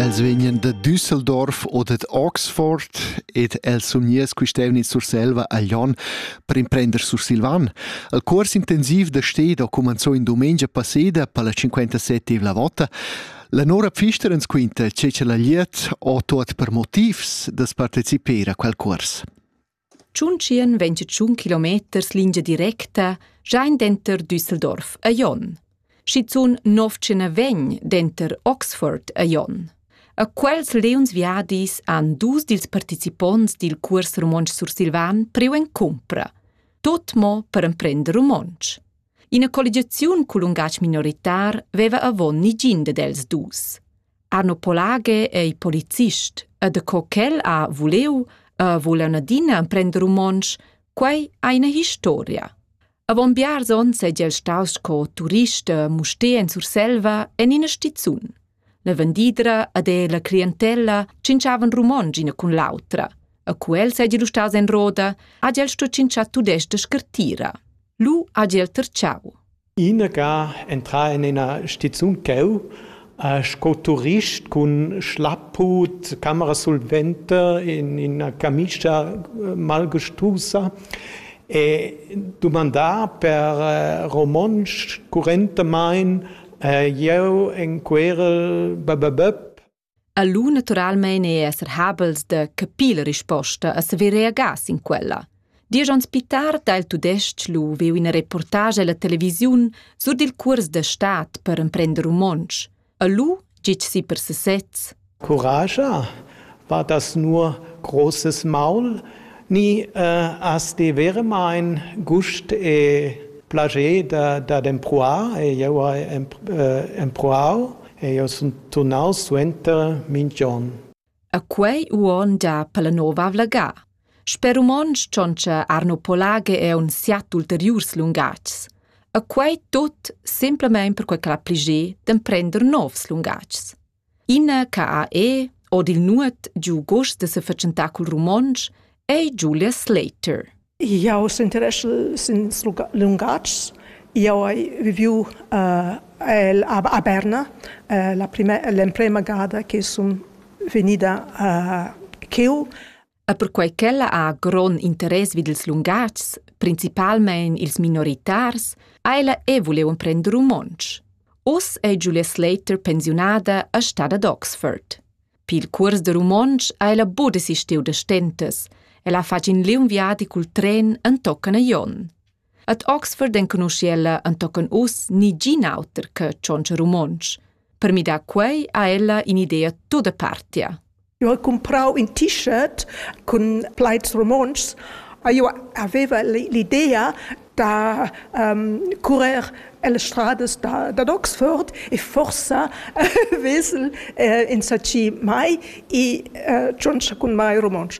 Els vegnan da Düsseldorf o dad Oxford ed els sun gnierts quist'eivna in Surselva a Glion per imprender sursilvan. Il cuors intensiv da sted ho cumanzò in dumengia passeda per la 57ª vota. La Nora Pfister ens quinta che cha la glieud ho tuot per motivs da's partecipar a quel cuors. Tschuntschian vegn tschun kilometers lingia directa Schein denter Düsseldorf a Jon. Schizun novtschena vegn denter Oxford a Jon. A quels leons viadis han dus dils participonts dil cuors romontsch sursilvan priu en cumpra, tot mo per emprender romontsch. Ina colligiaziun cul lungatg minoritar veva avon nigin ded els dus. Arno Polage è il policist ed co ch'el ha vuleu e vul en adina emprender romontsch, quei ha ina historia. Avon biars onns ei el staus sco turist e muster en Surselva en ina stizun. La vendidra ed e la clientella cinciavan romontsch ina cun l'autra. E cu el seigi lu staus en roda, ha el sto cinciar tudestg scartira. Lu ha el terciau. Inaga entrà en ina stizun ch'jeu, sco turist cun schlapput, camera solventa en ina camischa malgustusa e dumandà per romontsch currentamain jeu en querel bab. A lu naturalmein ei esser habels da capir la risposta e saver reagar sin quella. Diesch onns pli tard ha il tudestg lu viu ina reportage ella televisiun sur dil cuors da stat per emprender romontsch. A lu gitg si per sesez. Courage war das nur großes Maul, nie äh, hast die wäre mein Gust e plage da, da d'empruar e eu e empruau Eau sun turnaus suenter minch on. A quei uonn da Palanova Vlagà. Sper romontsch tschontscha Arno Polage è un siat ulteriurs lungatgs. A quei tut semplamein perquei ch'el ha pliger d'emprender novs lungatgs. Ina CAE od il nuot giu gust da se fatschentar cul romontsch ei Julia Slater. Jau s'interessu sin lungatgs. Jau hai viviu el a Berna l'emprema gada che sun vegnida cheu. E perquei ch'ella ha grond interess vid ils lungatgs, principalmein ils minoritars, ha ella e vuliu emprender romontsch. Uss è Julia Slater pensiunada a stada ad Oxford. Pil cuors de romontsch ha ella buca desistiu da stentas. Ella fa in liung viadi cul tren entochen a Jon. Ad Oxford enconusch'ella entochen uss ni gin auter che tschontscha romontsch. Per midar quei ha ella in'idea tutta partia. Eu ho comprau in t-shirt cun plaids romontschs. Eu aveva l'idea da um, currer le strades da, da Oxford e forsa uh, vesel uh, insatgi mai e uh, tschontscha cun mai romontsch.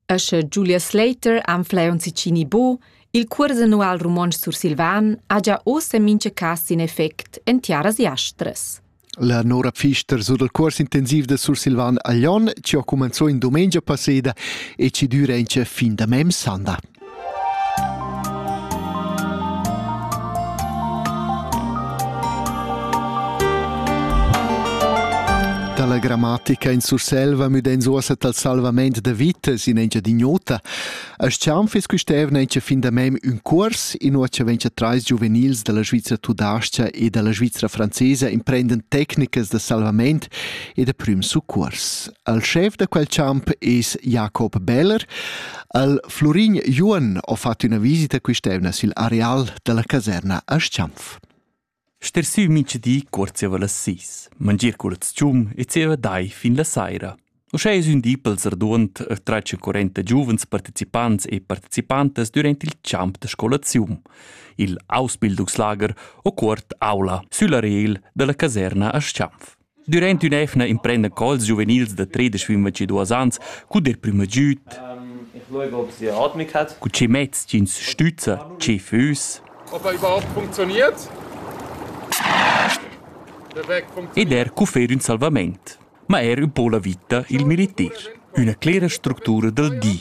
E sche Julia Slater anfleon sicini bo, il curs annual romontsch sursilvan ha già ossa mincha cas in effect en tiaras jastras. La Nora Pfister sur dal cuors intensiv da Sursilvan a Lyon ci ha cumenzò in dumengia passeda e ci düra in che fin da mem sanda. Dalla grammatica in Surselva müden zuosa tal salvament da vita sin engiadinota As chaun fiss quist'eivna inscha fin da mem ün cuors, inua cha vegn cha trais giuvenils da la Svizra tudascha e da la Svizra francesa imprendan tecnicas da salvament e da prüm succuors. Il schef da quel champ es Jakob Beller. Il Florin Juon ho fat üna visita quist'eivna sül areal da la caserna a Stampf. Ster siu mintgadi cuort zieva las sis, mangier cul tschum e zieva dai fin la saira. Uschè es ün di pels raduond e trais e quarenta giuvens partecipants e participantas durant il champ da scolaziun, il Ausbildungslager o cuort aula sülla rel da la caserna a Schanf. Durant ün'efna imprenda cols giuvenils da tredisch fin ventidüas ans cud der prüm agüd. Ich schaue, ob sie Atmung hat. Cu che mezs ch'ins stüzza, che füss. Ob er überhaupt funktioniert. Ed er cu fer ün salvament. Ma er ün po la vita, il militir. Üna clera structura dal di.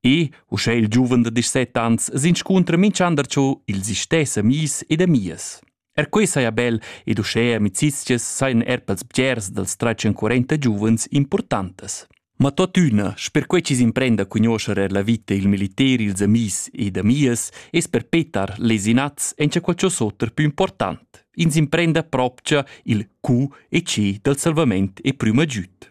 E, uschè il giuven da 17 ans, s'inscuntra minch'ander cho ils istess amis ed amias. Er quei saja bel ed uschè amicizias sajan er pels bgers dals tratg currenta giuvens importantas. Ma totüna, sper quei chi s'imprenda a cugnoscher er la vita e il militer ils amis ed amias, es per petar les inats encha qualcho's oter più important. Ins imprenda propcha il Q e C dal salvament e prüma giüt.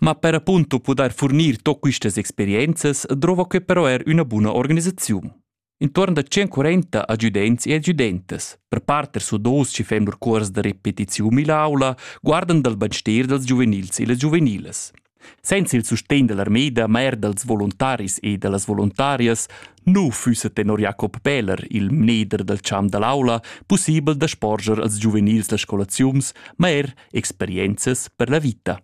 Ma per appunto pudair furnir to quistas experienzas drova que però er üna buna organisaziun. Intuorn da 140 adjudents e adjudentas, per parter su dos chi fem lur cuors da repetiziun mill'aula, guardan dal bainster dals giuvenils e las giuvenilas. Senza il sustegn dell'armeda, ma er dals volontaris e da las voluntarias, nu füssa tenor Jakob Peler, il mneder dal champ da l'aula, pussibel da sporger als giuvenils las scolaziuns, ma er experienzas per la vita.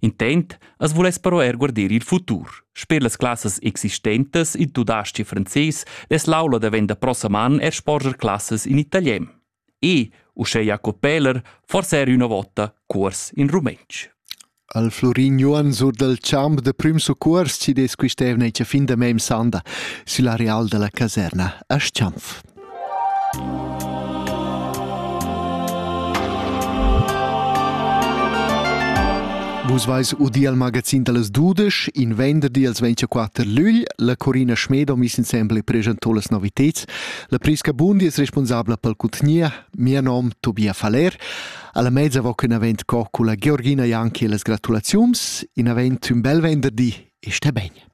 Intent as vuless però er guarder il futur. Sper las classas existentas, il tudasc e frances, es l'aula davenda prosaman er sporger classas in italian. E, uschè Jacob Peller, forse er üna vota cuors in rumentsch. Al Florin Johann sur dal champ da prüm succurs ci des quist'evna cha fin da mem sanda sülla real da la caserna a Schanf. Vus vais udi al magazin dallas dudesch, in venderdi als 24 lügl, la Corina Schmedo mis insembel presentò las noviteds. La Prisca Bundi es responsabla pel contgnier, mia nom Tobia Faller. Alla mezza voc in avent co culla Georgina Janki e las gratulaziums, in avent un bel venderdi e sta bene.